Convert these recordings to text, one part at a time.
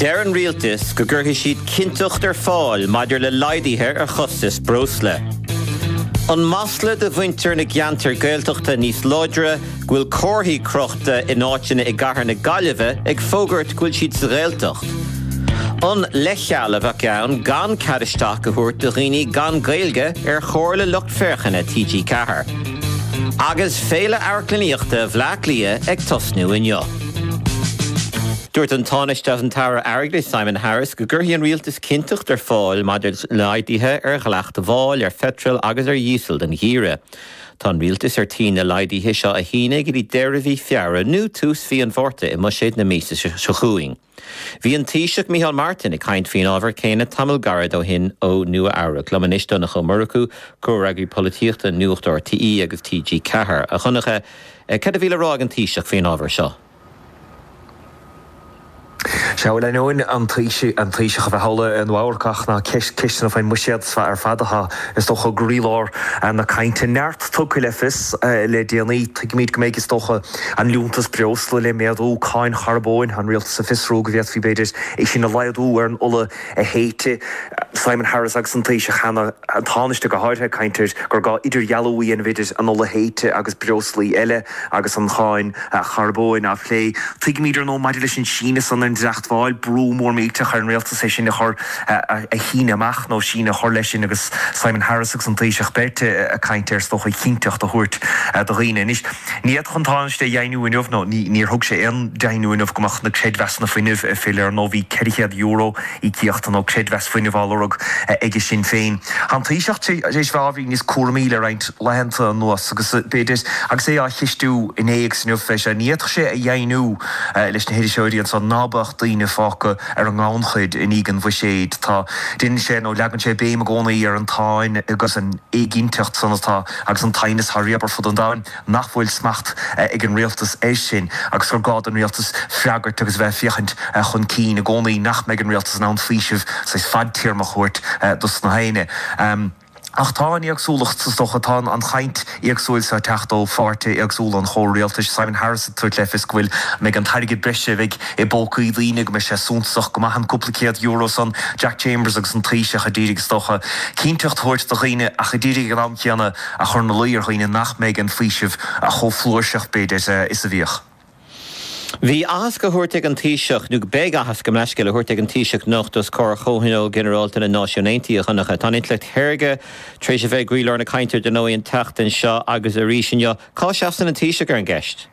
Deir an Rialtas go gcuirfidh siad cinnteacht ar fáil maidir le laghduithe ar chostais breosla. An masla do mhuintir na gceantar Gaeltachta níos láidre go bhfuil comharthaí crochta in áiteanna i gcathair na Gaillimhe ag fógairt go bhfuil siad sa Ghaeltacht. An leithcheal a bheadh ann gan cead isteach a thabhairt do dhaoine gan Gaeilge ar Chomhairle Lucht Féachana TG4. Agus Féile Amharclannaíochta Bhleá Cliath ag tosnú inniu. Dúirt an Tánaiste agus an tAire Airgeadais Simon Harris go gcuirfidh an Rialtas cinnteacht ar fáil maidir le laghduithe ar dhleacht mháil ar pheitreal agus ar dhíosal don gheimhreadh. Tá an Rialtas ar tí na laghduithe seo a shíneadh go dtí deireadh mhí Feabhra nó tús mhí an Mhárta i mbuiséad na míosa seo chugainn. Bhí an Taoiseach Micheál Martin ag caint faoin ábhar céanna tamall gairid ó shin ó Nua-Eabhrac. Liom anois Donncha Ó Murchú, Comhfhreagraí Polaitíochta Nuacht RTÉ agus TG4. A Dhonncha, Cad a bhí le rá ag an Taoiseach faoin ábhar seo? Sea, bhuel, ainneoin an Taoiseach a bheith thall i Nua-Eabhrac, na ceisteanna faoin mbuiséad ar fad atá, is dócha, i gcroílár na cainte. Neart tugtha le fios le déanaí. Tuigimid go mbeidh, is dócha, an liúntas breosla le méadú, cáin charbóin, an rialtas ag fiosrú go bhféadfaí, b'fhéidir, é sin a laghdú ar an ola, théite Simon Harris agus an Taoiseach cheana, an Tánaiste go háirithe, ag caint ar gur gá idirdhealú a dhéanamh idir an ola théite agus breoslaí eile agus an cháin charbóin á phlé. Tuigimid, ar ndóigh, maidir leis an síneadh san ar an dleacht mháil, brú mór millteach ar an Rialtas é sin a chur, a shíneadh amach nó síneadh a chur leis sin agus Simon Harris agus an Taoiseach beirt ag caint air, is dócha, cinnteacht a thabhairt do dhaoine. Anois. Ní fhéadfadh an Tánaiste a dheimhniú inniu, nó níor thug sé aon deimhniú inniu, go mbeadh na creidmheasanna fuinnimh ag filleadh. Ar ndóigh, bhí €400, íocaíocht nó creidmheas fuinnimh, á lorg aige Sinn Féin. Tá an Taoiseach tar éis bheith ábhairín níos cúramaí le roinnt laethanta anuas agus, b'fhéidir, agus é á cheistiú inné agus inniu, fé seo, ní fhéadfadh sé a dheimhniú leis na hiriseoirí anso ná beadh daoine fágtha ar an ngannchuid i ndiaidh an Bhuiséid. Tá, déanann sé, nó leagann sé béim i gcónaí ar an tsáinn agus an éiginnteacht san atá. agus an t-aighneas thar lear, ar fud an domhain nach bhfuil smacht ag an rialtas air sin agus gur gá don rialtas freagairt agus a bheith ag féachaint chun cinn i gcónaí nach mbeidh an rialtas in ann faoiseamh saghas fadtéarmach a thabhairt dos na haenne. Ach tá an éagsúlacht, is dócha, tá an chaint éagsúil seo ag teacht ó pháirtithe éagsúla an chomhrialtais. Simon Harris ag tabhairt le fios go bhfuil, go mbeidh an t-airgead breise a bheidh. I bpócaí daoine go mbeidh sé suntasach go maith an cúpla céad euro san, Jack Chambers agus an Taoiseach ag iarraidh, is dócha, cinnteacht a thabhairt do dhaoine ach ag iarraidh ag an am céanna a chur ina luí ar dhaoine nach mbeidh an faoiseamh chomh flúirseach, b'fhéidir, is a bhíodh. Bhí aitheasc á thabhairt ag an Taoiseach, nó beidh aitheasc, gabh mo leithscéal, á thabhairt ag an Taoiseach anocht os comhair Chomhthionól Ginearálta na Náisiún Aontaithe, a Dhonncha. Tá an intleacht shaorga tar éis a bheith i gcroílár na cainte ar ndóigh an tseachtain seo agus arís inniu. Cá seasann an Taoiseach ar an gceist?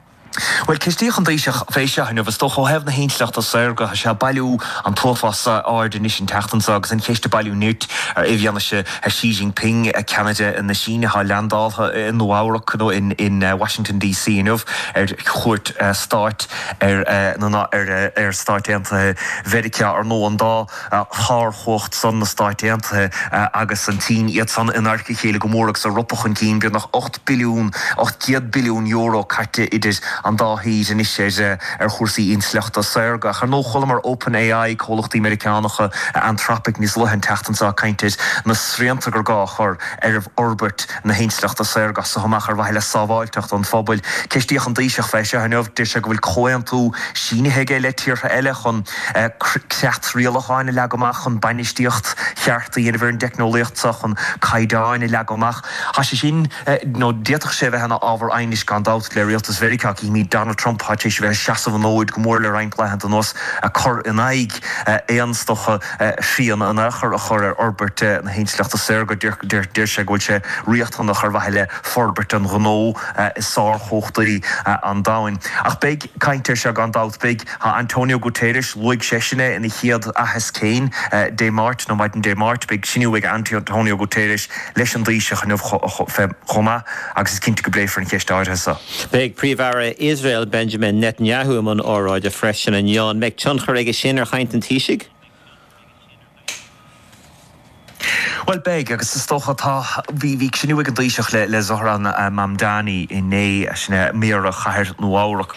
Bhuel, ceistíodh an Taoiseach fé seo inniu. Is dócha, ó thaobh na hintleachta saorga, tá sé ag bailiú an t-uafás aird anois an tseachtain seo agus an cheist ag bailiú nirt i bhfianaise Xi Jinping, ceannaire na Síne, atá landáilte i Nua-Eabhrac, nó in Washington DC inniu, ar chuairt stáit ar Stáit Aontaithe Mheiriceá. Ar ndóigh, an dá. shárchumhacht san, na Stáit Aontaithe agus an tSín, iad san in adharca a chéile go mór agus ag ropadh chun cinn, beagnach ocht billiún, €800 billiún caite idir an dá thír anois ar chúrsaí intleachta saorga. Ach ar ndóigh chualamar OpenAI, comhlachtaí Meiriceánacha, Anthropic níos luaithe an tseachtain seo ag caint ar na srianta gur gá a chur ar fhorbairt na hintleachta saorga as so amach ar mhaithe le sábháilteacht an phobail. Ceistíodh an Taoiseach fé seo inniu. Deir sé go bhfuil comhaontú sínithe aige le tíortha eile chun. creat rialacháin a leagadh amach chun bainistíocht cheart a dhéanamh ar an dteicneolaíocht seo, chun caighdeáin a leagadh amach. Tá sé sin, nó d'fhéadfadh sé a bheith, ina ábhar aighnis gan dabht le rialtas Mheiriceá. Címid Donald Trump, atá tar éis a bheith ag seasamh an fhóid go mór le roinnt laethanta anuas, ag cur in aghaidh aon tsaghas srian in aon chor a chur ar fhorbairt na hintleachta saorga. Deir sé go bhfuil sé riachtanach ar mhaithe le forbairt an ghnó is sárchumhachtaí an domhain. Ach beidh. Caint air seo gan dabht. Beidh Antonio Guterres, luaigh seisean é ina chéad aitheasc féin Dé Máirt, nó maidin Dé Máirt, beidh cruinniú ag Antonio Guterres leis an dTaoiseach inniu chomh maith agus is cinnte go bpléifear an cheist áirithe seo. Beidh Príomh-Aire Iosrael Benjamin Netanyahu i mbun óráide freisin inniu. An mbeidh tionchar aige sin ar chaint an Taoisigh? Bhuel, beidh, agus is dócha tá. Bhí cruinniú ag an dTaoiseach le Zohran Mamdani inné, sin é Méara Chathair Nua-Eabhrac.